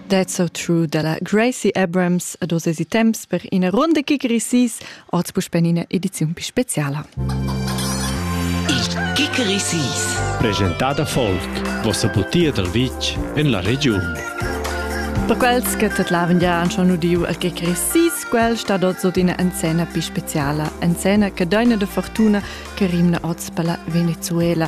That's so true dalla Gracie Abrams ad oz esi temps per ina ronda che gresis, oz puspen ina ediziun più speciala. Il che gresis. Presentada folk, vossa butia dal vitg en la regiun. Per quels che tedlaven ja han schon udiu al che gresis, quel sta dort so d'ina enzena più speciala, enzena che deina de fortuna che rimna oz per la Venezuela,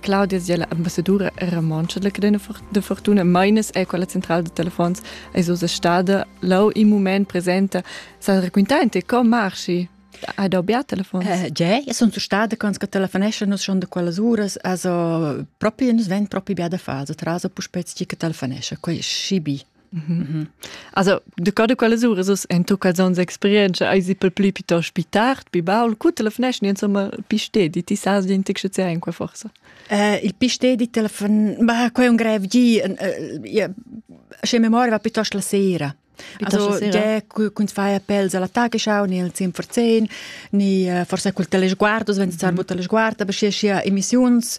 Claudia è l'ambassadura romontscha della cadena de fortuna Meines è quella central de telefons es usa stada lau in moment presenta sa raccontaente co marschi Hai da obbiar telefons? Uh, Ge, io sono stata quando che telefonesce nos schon da quelle ore, also proprio nos vent proprio bia da fase, traso pu spez chi che telefonesce, quei scibi. Mhm. Also, du ca de quelles uras es en tu calzons experienza ai si pel plü piuttost pi tard, pi baul, cu te lefneschni insomma pi stedi, ti sas din tic sche in qua forsa? Uh, il pi stedi telefon, ma quai è un grev gi, sche memoria va piuttost la sera. Also, de kun fai appels alla tagesschau ni al zim verzehn ni forse col telesguardos wenn zar mut telesguard aber sche sia emissiuns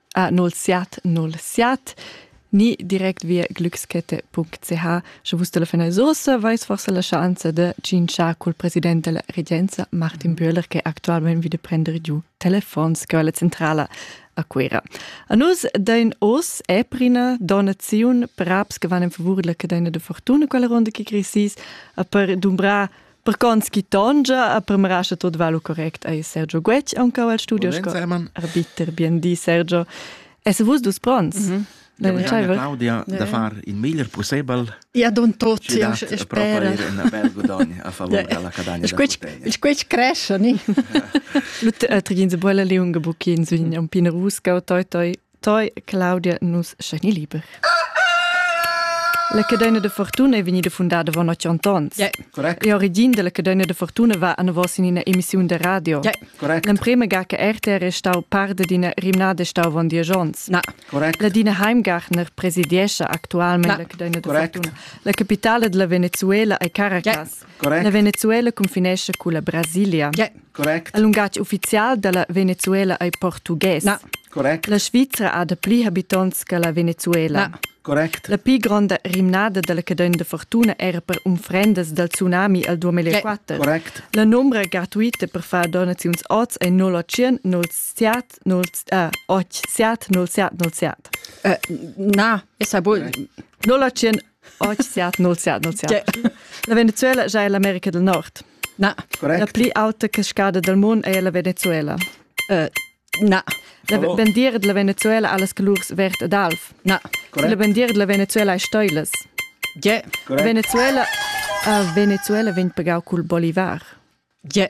a nolsiat nolsiat ni direct via glückskette.ch sche vus telefona sosa vais forse la chance de cinciar col president della regenza Martin Böhler che actualmente vide prendere giù telefons che la centrala a Cuira. A nus dein os è prina donaziun per abs che van in favore della cadena de fortuna quella ronda che crisis a per dumbra Per cons chi tongia a premrascha tot va lu correct ei Sergio Guetg aunca al studio sco arbiter bien di Sergio es vus dus pronts mm -hmm. Claudia Claudia da far in meglier possibel ja don tot ja spera a favor della cadagna il quech cresce ni lu trigin se bolla leunga buchin sün un pin rusca toi toi Toi, Claudia, nus sceni liber. La cadena de fortuna è vegnida fundada von 800 ans. Yeah, correct. L'origin della cadena de fortuna va a vos in una emissione de radio. Yeah, correct. L'emprema ga che RTR è stau parte di una rimnada stau von dieci ans. Na. Correct. La dina Heimgartner presidiesce actualmente Na, la cadena de correct. fortuna. La capitale della Venezuela è Caracas. Yeah. Correct. La Venezuela cunfinescha culla Brasilia. Yeah. Correct. Il lungatg ufficial da la Venezuela ei portugues. Na. Correct. La Svizra ha dapli habitonts che la Venezuela. Na. Correct. La pli gronda rimnada dalla cadena de fortuna era per unfrendas dal tsunami al 2004. Correct. La numera gratuita per far donaziuns oz è 0800 07 0800 07 07. Uh, na, essa bol 0800 siat nol siat nol siat la Venezuela già è l'America del Nord na la pli auta cascada del mondo è la Venezuela uh, na la oh. bandiera della Venezuela ha las colors verd ed alv na la bandiera della Venezuela è stoiles yeah. Venezuela uh, Venezuela vegn pagau col bolivar yeah.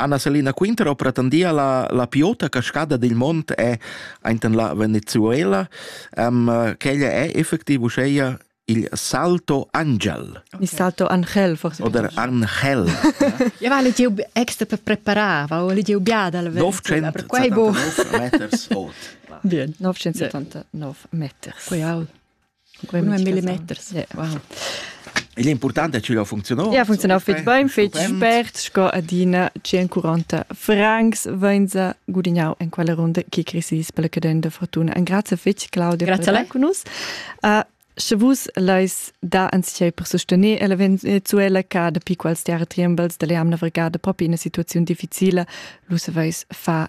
Anna Selina Quinter ho pretendia la, la più ota cascada dil mond è ainten la Venezuela. Um, quella è effectiv uscheia il salto angel. Il salto angel, forse. Oder angel. ja, weil ich die extra per preparar, weil ich die ubiada al Venezuela, per quei bo. 979 meters. Bien, 979 meters. Quei au. millimeters. Yeah. Wow. Igl important è che la funziona. Ja, funziona fitg bain, fitg spert, sco adina 140 francs venza gudignau en quella ronda che crisis per la cadenda fortuna. Un grazie fitg Claudia grazie per con us. Uh, Sche vus leis da anziei per sostener la Venezuela ca dapi quals tiara triembels della jamna vergada propi in una situazione difficile, lu saveis fa